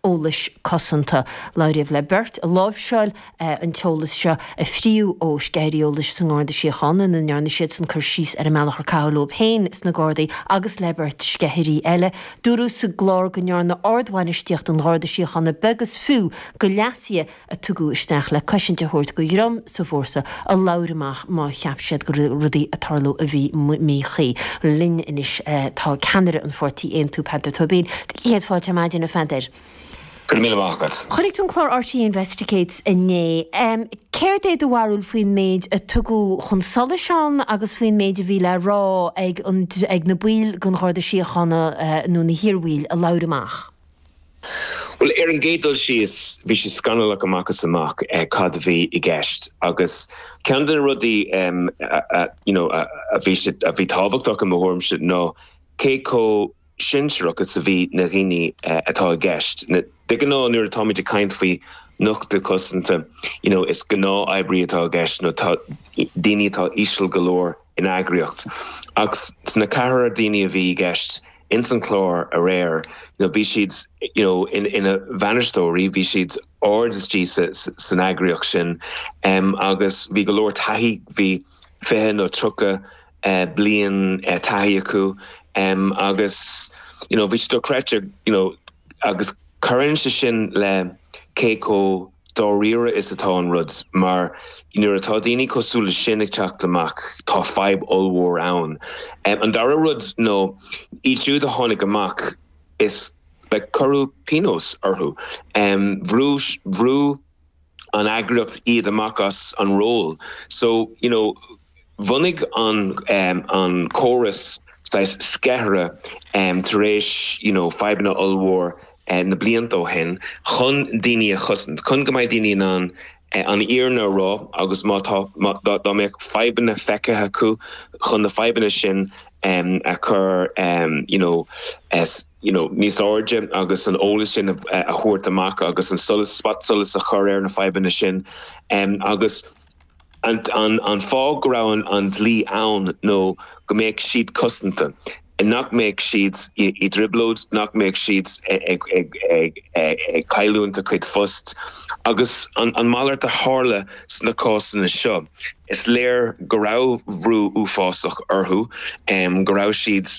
eolais cosanta. Labhraíodh le beirt a láimhseáil an t-eolas seo a fríodh ó sceithirí eolais sa nGarda Síochána ina ndearna siadsan cur síos ar an mbealach ar caitheadh leo féin sna Gardaí agus le beirt sceithirí eile. Dúradh sa gclár go ndearna ardbhainistíocht an Gharda Síochána beag is fiú de leasuithe a tugadh isteach le cosaint a thabhairt do dhream sa bhfórsa a labhair amach má cheap siad go raibh rudaí ag tarlú a bhí míchuí. linn anois tá ceannaire an pháirtí Aontú, Peadar Tóibín. Céad fáilte ar maidin, a Pheadair. Go raibh míle maith agat. Chonaic tú an clár RTÉ Investigates inné. Céard é do bharúil faoin méid a tugadh chun solais ann agus faoin méid a bhí le rá ag na baill den Gharda Síochána nó na hiarbhaill a labhair amach? Bhuel, ar an gcéad dul síos, bhí sé scannalach amach is amach cad a bhí i gceist agus ceann de na rudaí you know a bhí tábhachtach i mo thuairimse ná cé chomh sinsearach is a bhí na dhaoine atá i gceist. De ghnáth nuair atáimid ag caint faoi nochtadh cosanta you know is gnáth-oibrí atá i gceist nó daoine atá íseal go leor in eagraíocht ach sna ceathrar daoine a bhí i gceist, ins an chlár aréir you know bhí siad you know in ina bhainisteoirí bhí siad ard istigh san eagraíocht sin um, agus bhí go leor taithí bhí 20 nó 30 uh, eh, blian uh, eh, taithí acu um, agus you know bhí sé dochreidte you know agus cuireann sé sin le cé chomh dáiríre is atá an rud, mar nuair atá daoine cosúil le sin ag teacht amach, tá fadhb ollmhór ann. An dara rud nó, iad siúd a tháinig amach, is like cuireadh pionós orthu. Bhrú an eagraíocht iad amach as an ról. So, you know. Bhunaigh an córas saghas sceithirí tar éis you know fadhbanna ollmhór na blianta ó shin chun daoine a chosaint, chun go mbeidh daoine in ann an fhírinne a rá agus má tá, dá mbeadh fadhbanna feicthe acu, chun na fadhbanna sin a chur you know you know níos airde agus an eolas sin a thabhairt amach agus an solas, spotsolas a chur ar na fadhbanna sin agus. An fáth go raibh an dlí ann ná go mbeadh siad cosanta, nach mbeadh siad i dtrioblóid, nach mbeadh siad ag cailliúint a gcuid phost. Agus an malairt a tharla sna cásanna seo. Is léir go raibh brú uafásach orthu, go raibh siad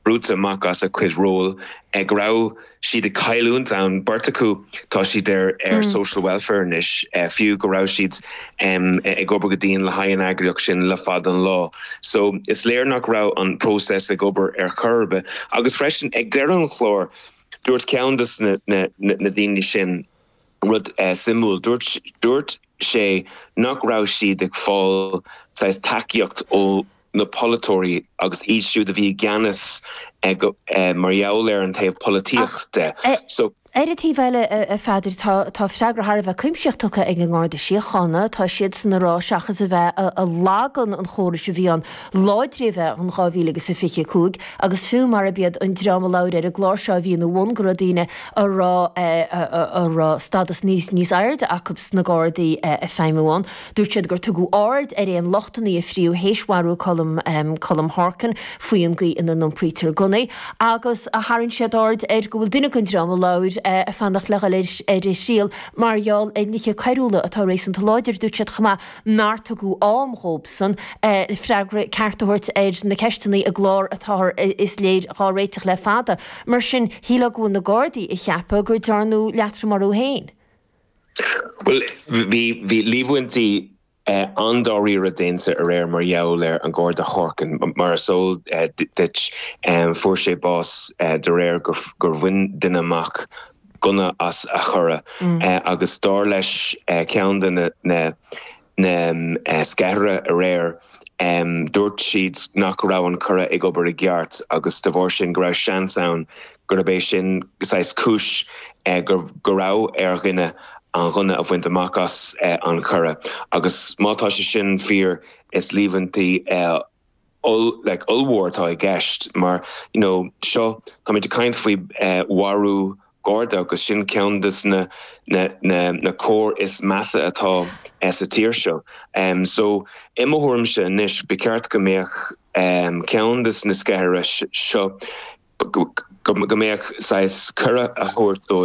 brúite amach as a gcuid ról, go raibh. siad ag cailliúint ann. Beirt acu, tá siad ar social welfare anois, fiú go raibh siad ag obair go dian le haghaidh an eagraíocht sin le fada an lá. So, is léir nach raibh an próiseas ag obair ar chor ar bith. Agus freisin, ag deireadh an chláir, dúirt ceann dos na daoine sin rud suimiúil. Dúirt sé nach raibh siad ag fáil saghas tacaíocht ó. na polaiteoirí agus iad siúd a bhí i gceannas mar gheall ar an taobh polaitíochta de. Ach ar an taobh eile, a Pheadair, tá freagra thar a bheith cuimsitheach tugtha ag an nGarda Síochána. Tá siadsan ag rá, seachas a bheith ag lagan an chórais a bhí ann láidriú a bhí in 2000 agus a 25, agus fiú marab iad an dream a labhair ar an gclár seo a bhí ina bhun, go raibh daoine a raibh stadas níos airde acu sna Gardaí ag feidhmiú ann. Dúirt siad gur tugadh aird ar aon lochtanna a fríodh théis mharú Colm, Colm Horkan, faoi an gcaoi ina n-iompraítear gunnaí agus tharraing siad aird ar go bhfuil duine den dream a labhair ag fanacht le dhul ar a thriail mar gheall ar nithe coiriúla atá réasúnta láidir. Dúirt siad chomh maith nár tugadh am dhóibhsan freagra ceart a thabhairt ar na ceisteanna i gclár atáthar, is léir, dhá réiteach le fada. Mar sin, shílfeá go bhfuil na Gardaí ag ceapadh gur dearnadh leatrom orthu féin. Bhuel, bhí, bhí líomhaintí an-dáiríre déanta aréir mar gheall ar an Garda Horkan. Mar is eol duit, fuair sé bás de réir gur bhain duine amach gunna as a churra agus dar leis ceann de na, na sceithire aréir. Dúirt siad nach raibh an curra ag obair i gceart agus de bharr sin go raibh seans ann gurb é sin saghas cúis go raibh ar dhuine an gunna a bhaint amach as an churra agus má tá sé sin fíor is líomhaintí oll like ollmhór atá i gceist mar you know seo táimid ag caint faoi eh, mharú Garda agus sin ceann dos na na, na, na coir is measa atá eh, sa tír seo. Um, so i mo thuairmse anois ba cheart go mbeadh um, ceann dos na sceithire seo go mbeadh saghas cuireadh a thabhairt dóibh